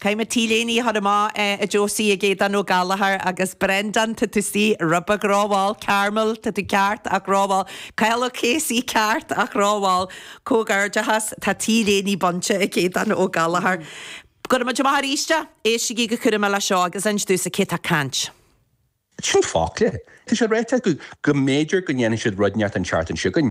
Caithfidh mé t-léine a chur amach, a Josie, chuig Aodán Ó Gallachóir agus Brendán Tutusi, ró-bheag ró-mhall, Carmel, tá tú ceart ach ró-mhall, Cathal Ó Cathasaigh, ceart ach ró-mhall, comhghairdeachas, tá t-léine bainte ag Aodán Ó Gallachóir. Go raibh maith agat arís! Éistigí go cúramach leis seo agus inis domhsa cé tá ag caint. Sin fágtha. Tá sé ráite acu go mb'fhéidir go ndéanfaidh siad rud éigineacht an tseachtain seo againn.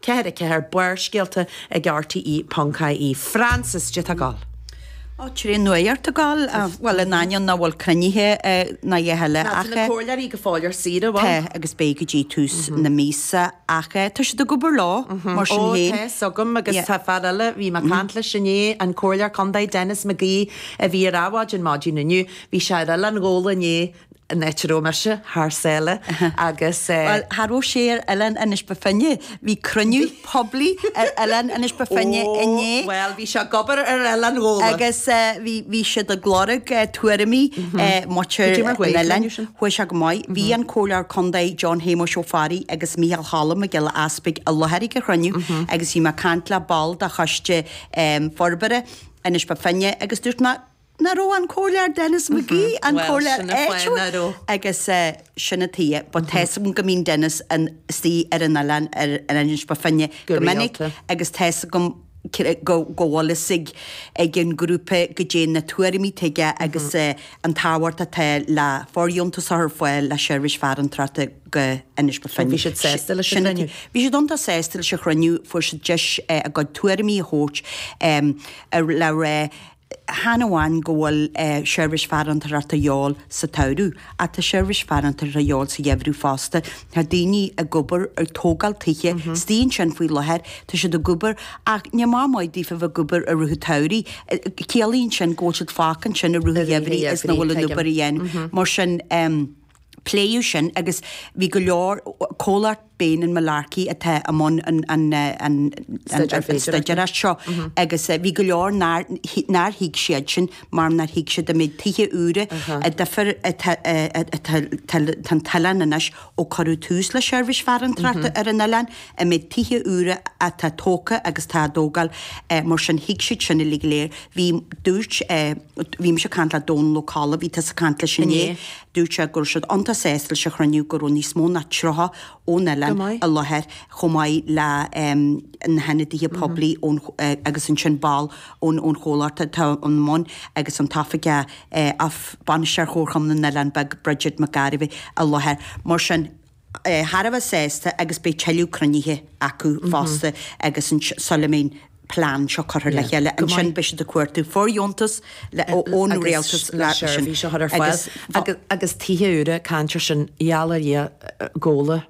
Ceathair a ceathair, Barrscéalta ag RTÉ ponc ie Frances J Tá tú ag gabháil. Ó, trí nuair ag gabháil, bhuel, in ainneoin nach bhfuil cruinnithe ná a dhath ach. Tá na comhairleoirí go fóill ar saoire bhuel. Tá agus beidh go dtí tús na míosa ach tá siad ag obair leo mar sin féin. Ó, tá a fhios agam agus tá fear eile, bhí mé ag caint leis inné, an comhairleoir contae Denis McGee a bhí ar Adhmhaidin, maidin inniu, bhí sé ar Oileán Ghabhla inné, Natural mise, thar sáile agus eh. Bhuel, tharla go raibh sé ar oileán Inis Ba Finne, bhí cruinniú poiblí ar oileán Inis Bó Finne inné. Ó, bhuel, bhí sé ag obair ar oileán Ghabhla. Agus bhí siad ag lorg tuairimí muintir na n-oileán. Chuaigh sé go maith. Bhí an Comhairleoir Contae John Shéamuis Ó Fearraigh agus Micheál Cholm Mac Giolla Easpaig i láthair ag an chruinniú agus bhí mé ag caint le ball de choiste forbartha Inis Bó Finne agus dúirt mé, Nach raibh an Comhairleoir Denis McGee, an Comhairleoir áitiúil agus sin a taobh, but tá 'fhios agam go mbíonn Denis istigh ar an oileán ar Inis Bó Finne go minic agus tá 'fhios agam go bhfuil sé ag an grúpa go dtéann na tuairimí chuige agus an tábhacht atá le fóirdheontas a chur ar fáil le seirbhís farantóireachta go hInis Bó Finne. Bhí siad sásta leis an chruinniú? Bhí siad iontach sásta leis an chruinniú, fuair siad deis a gcuid tuairimí a thabhairt le rá. Chan amháin go bhfuil seirbhís farantóireachta de dhíobháil sa tsamhradh, ach tá seirbhís farantóireachta de dhíobháil sa gheimhreadh fosta. Tá daoine ag obair, ag tógáil tithe, istigh ansin faoi láthair, tá siad ag obair, ach ní haon mhaith daofa a bheith ag obair i rith an tsamhraidh. Ciallaíonn sin go bhfuil siad fágtha ansin i rith an gheimhridh is nach bhfuil an obair á déanamh. Mar sin. Pléadh sin agus bhí go leor, comhlacht Bain and Mullarkey atá i mbun an stuidéartha seo, agus bhí go leor nár thuig siadsin mar nár thuig siad an méid tithe úra an difear, atá san oileán anois ó cuireadh tús le seirbhís farantóireachta ar an oileán, An méid tithe úra atá tógtha agus atá á dtógáil, mar sin, thuig siad sin uilig léir. Bhí, dúirt, bhí mise ag caint le Dónal Ó Colla, bhí tusa ag caint leis inné, dúirt sé go raibh siad iontach sásta leis an chruinniú, go raibh níos mó ná 30 ón oileán i láthair, chomh maith leis na hionadaithe poiblí ón, agus ansin ball ón, ón chomhlacht atá i mbun agus an t-oifigeach, bainisteoir Chomharchumann na nOileán Beag, Bridget McGarvey, i láthair. Mar sin. thar a bheith sásta agus beidh tuilleadh cruinnithe acu fosta agus an sula mbeidh an plean seo curtha le chéile. Ansin beidh siad ag cuartú fóirdheontas ón rialtas le seirbhís a chur ar fáil agus tithe úra, caint ar sin, ghabháil ar ais go Gabhla,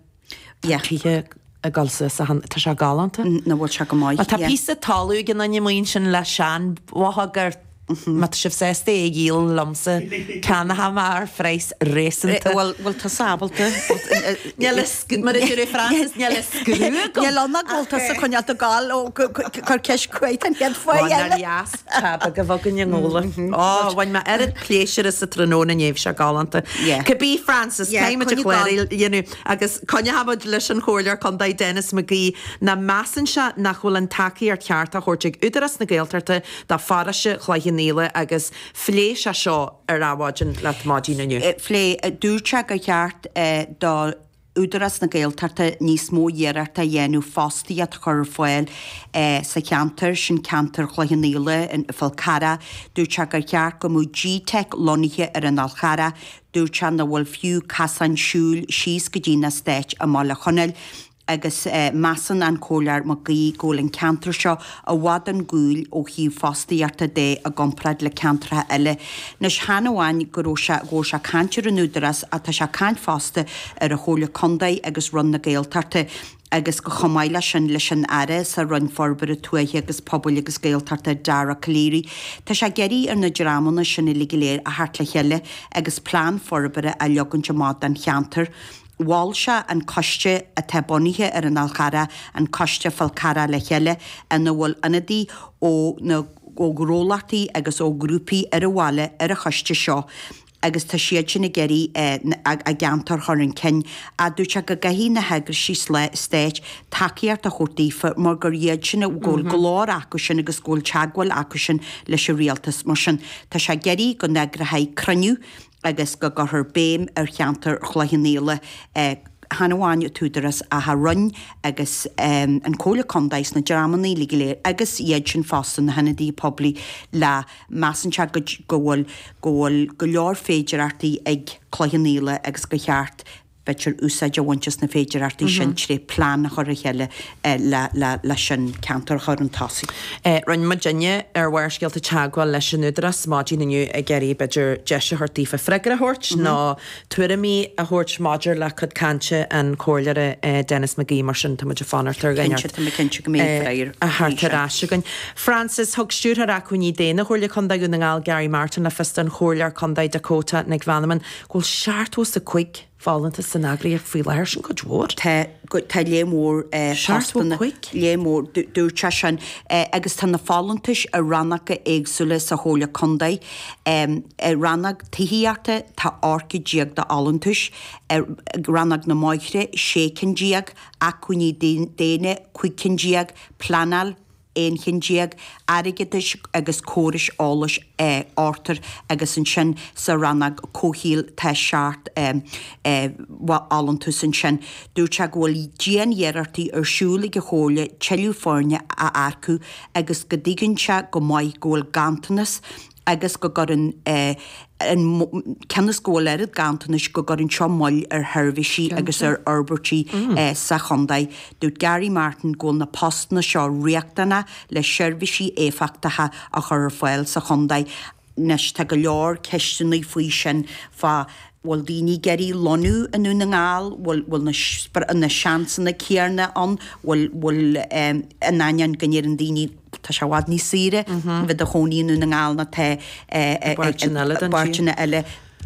tá tithe ag dul suas ann, tá sé galánta. An bhfuil sé go maith? Tá píosa talamh ag an Dinny Mhaoinis ansin le seanbhóthar. má tá sibh sásta é a dhíol liomsa, ceannóidh mé ar phraghas réasúnta. Bhuel, bhuel, tá tusa ábalta. Níl a, mar a dúirt Francis, níl a scrúdú agam. Níl ann ná go bhfuil tusa ag coinneáil do gal ó chuir ceist chugat an chéad uair eile. Ó, ná dheas, tá beag a bhog i nGabhla. Ó, bhain mé oiread pléisiúr as sa tráthnóna inné, bhí sé galánta. Cibí, Francis, caithfidh muid a chloireadh, you know, agus coinneochaidh muid leis an Chomhairleoir Contae Denis McGee, a mheasann sé nach bhfuil an tacaíocht cheart á thabhairt ag Údarás na Gaeltachta do pharóiste Chloich Cheann Fhaola agus phléigh sé seo ar Adhmhaidin leat maidin inniu. Phléigh. Dúirt sé gur cheart do Údarás na Gaeltachta níos mó iarrachta a dhéanamh fostaíocht a chur ar fáil sa cheantar sin, ceantar Chloich Cheann Fhaola, an Fál Carrach. Dúirt sé gur cheart go mbeadh gteic lonnaithe ar an Fhál Charrach. Dúirt sé nach bhfuil fiú casáin siúil síos go dtí an eastát i mBaile Chonaill. agus measann an Comhairleoir Mac Aoidh go bhfuil an ceantar seo i bhfad chun cúil ó thaobh fostaíochta de i gcomparáid le ceantracha eile. Anois, chan amháin go raibh sé, go bhfuil sé ag caint ar an Údarás ach tá sé ag caint fosta ar an Chomhairle Contae agus Roinn na Gaeltachta agus go chomh maith leis sin leis an Aire sa Roinn Forbartha Tuaithe agus Pobail agus Gaeltachta, Dara Calleary. Tá sé ag iarraidh ar na dreamanna sin uilig go léir a theacht le chéile agus plean forbartha a leagaint amach don cheantar. Mhol sé an coiste atá bunaithe ar an Fhál Charrach, an Coiste Falcarragh le chéile, ina bhfuil ionadaí ó na ó ghnólachtaí agus ó ghrúpaí ar an bhaile ar an choiste seo agus tá siad sin ag iarraidh an ceantar a chur chun cinn. Dúirt sé go gcaithfidh na heagraisí stáit tacaíocht a thabhairt daofa mar gur iad sin a go bhfuil glór acu sin agus go bhfuil teagmháil acu sin leis an rialtas. Mar sin, tá sé ag iarraidh go n-eagrófaí cruinniú, agus go gcuirfear béim ar cheantar Chloich Cheann Fhaola, chan amháin an tÚdarás ach an Roinn agus an Comhairle Contae is na dreamanna uilig go léir agus iad sin fosta, na hIonadaithe Poiblí, le, measann sé go bhfuil go bhfuil go leor féidearthachtaí ag Cloich Cheann Fhaola agus gur cheart, b'fhéidir úsáid a bhaint as na féidearthachtaí sin tré plean a chur le chéile leis an ceantar a chur 'un tosaigh. Rinne muidinne ar Bharrscéalta teagmháil leis an Údarás maidin inniu ag iarraidh, b'fhéidir, deis a thabhairt daofa freagra a thabhairt nó tuairimí a thabhairt maidir le cuid cainte an Chomhairleora Denis McGee, mar sin tá muid ag fanacht ar dhuine a theacht ar ais againn. Frances, Thug Stiúrthóir Acmhainní Daonna Chomhairle Contae Dhún na nGall, Gary Martin, le fios don Chomhairleoir Contae Dakota Nic Mheanman go bhfuil seachtó 's a cúig folúntas san eagraíocht faoi láthair, sin cuid mhór. tá, tá lear mór postanna, lear mór, dúirt sé sin, agus tá na folúntais i rannóga éagsúla sa Chomhairle Contae. I rannóg tithíochta tá ochtar déag d'fholúntais, i rannóg na mbóithre sé cinn déag, acmhainní daonna cúig cinn déag, pleanáil, aon cheann déag, airgeadais agus córais eolais ochtar agus ansin sa rannóg comhshaoil tá seacht bhfolúntas ansin. Dúirt sé go bhfuil dianiarrachtaí ar siúl ag an Chomhairle tuilleadh foirne a earcú agus go dtuigeann sé go maith go bhfuil ganntanas agus go gcuireann an, cionn is go bhfuil oiread ganntanais, go gcuireann seo moill ar sheirbhísí agus ar fhorbairtí sa chontae. Dúirt Gary Martin go bhfuil na postanna seo riachtanach le seirbhísí éifeachtacha a chur ar fáil sa chontae. Anois, tá go leor ceisteanna faoi sin, fá bhfuil daoine ag iarraidh lonnú i nDún na nGall, bhfuil, bhfuil na, na seansanna céanna ann, bhfuil, bhfuil, in ainneoin go ndeireann daoine, Tá sé i bhfad níos saoire a bheith i do chónaí i nDún na nGall ná tá i bpáirteanna eile.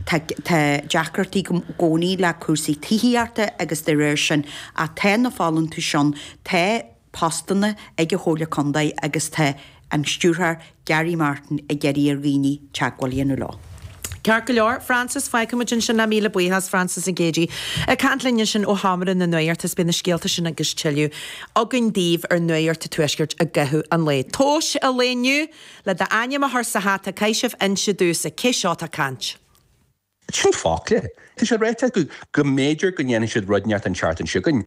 Tá deacrachtaí i gcónaí le cúrsaí tithíochta agus de réir sin ach tá na folúntais ann, tá postanna ag an Chomhairle Contae agus tá an Stiúrthóir Gary Martin ag iarraidh ar dhaoine teagmháil a dhéanamh leo. Ceart go leor, Frances, fágfaimid ansin é, míle buíochas, Frances Nic Géadaigh ag caint linn ansin ó Sheomra na Nuachta, is beidh na scéalta sin agus tuilleadh againn daoibh ar Nuacht a' Tuaiscirt i gcaitheamh an lae. Tomhas an lae inniu, le d'ainm a chur sa hata, caithfidh sibh inse domhsa cé seo atá ag caint. 'S in fact, tá sé ráite acu go mb'fhéidir go ndéanfaidh siad rud ineacht an tseachtain seo chugainn.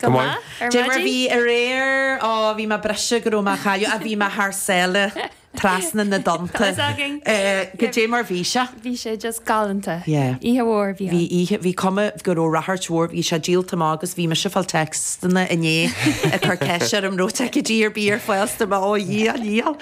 Go maith ar maidin. Goidé mar bhí aréir? Ó, bhí mé briste go raibh mé á chailleadh, ach bhí mé thar sáile trasna na dtonnta. Conas againn? Eh, goidé mar bhí sé. Bhí sé just galánta. Yeah. Oíche mhór a bhí ann. Bhí oíche, bhí cuma go raibh ráchairt mhór, bhí sé díolta amach agus bhí mise ag fáil téacsanna inné ag cur ceist orm, raibh ticéidí ar bith ar fáil, 's dúirt mé, ó a dhia, a dhia.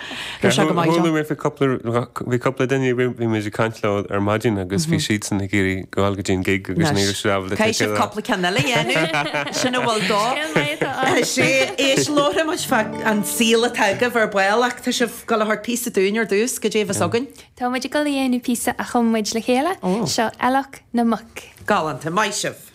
Bhí sé go maith Chuala mé cúpla, bhí cúpla duine, bhí muid ag caint leo ar maidin agus bhí siadsan ag iarraidh a ghabháil go dtí an gig agus Anois, níor éirigh leo caithfidh siad cúpla ceann eile a dhéanamh, sin a bhfuil dó. Cén lae atá ann? Tá sé, éist, labharfaidh muid fá an saol atá agaibh ar ball ach tá sibh ag dul a thabhairt píosa dúinn ar dtús, goidé a bheas againn. Tá muid ag dul a dhéanamh píosa a chum muid le chéile, seo Eallach na Muc. Galánta, maith sibh!